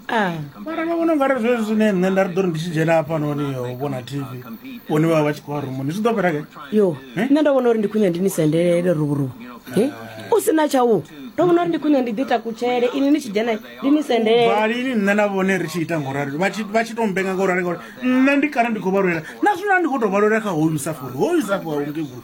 ah. mara vha vhona ungari zwezwi zwine nṋe nda ri ḓo ri ndi tshi dzhena hafhanoni yo vhona tv vhone vha vha vha tshi khou vha rumuni zwi ḓo fhela ke yo eh? nṋe ndo vhona uri ndi khwine ndi ni sendelele ruvhuruvu eh? u si na tshau ndo vhona uri ndi khwine ndi ḓi takutshele ini ni tshi dzhena ndi ni sendelevalini nṋe na vhone ri tshi ita ngorali vha tshi to mbenga ngorali ngori nṋe ndi kana ndi khou vha lwela na zwino ndi khou to vha lwela kha hoyu safori hoyu safo aungegulu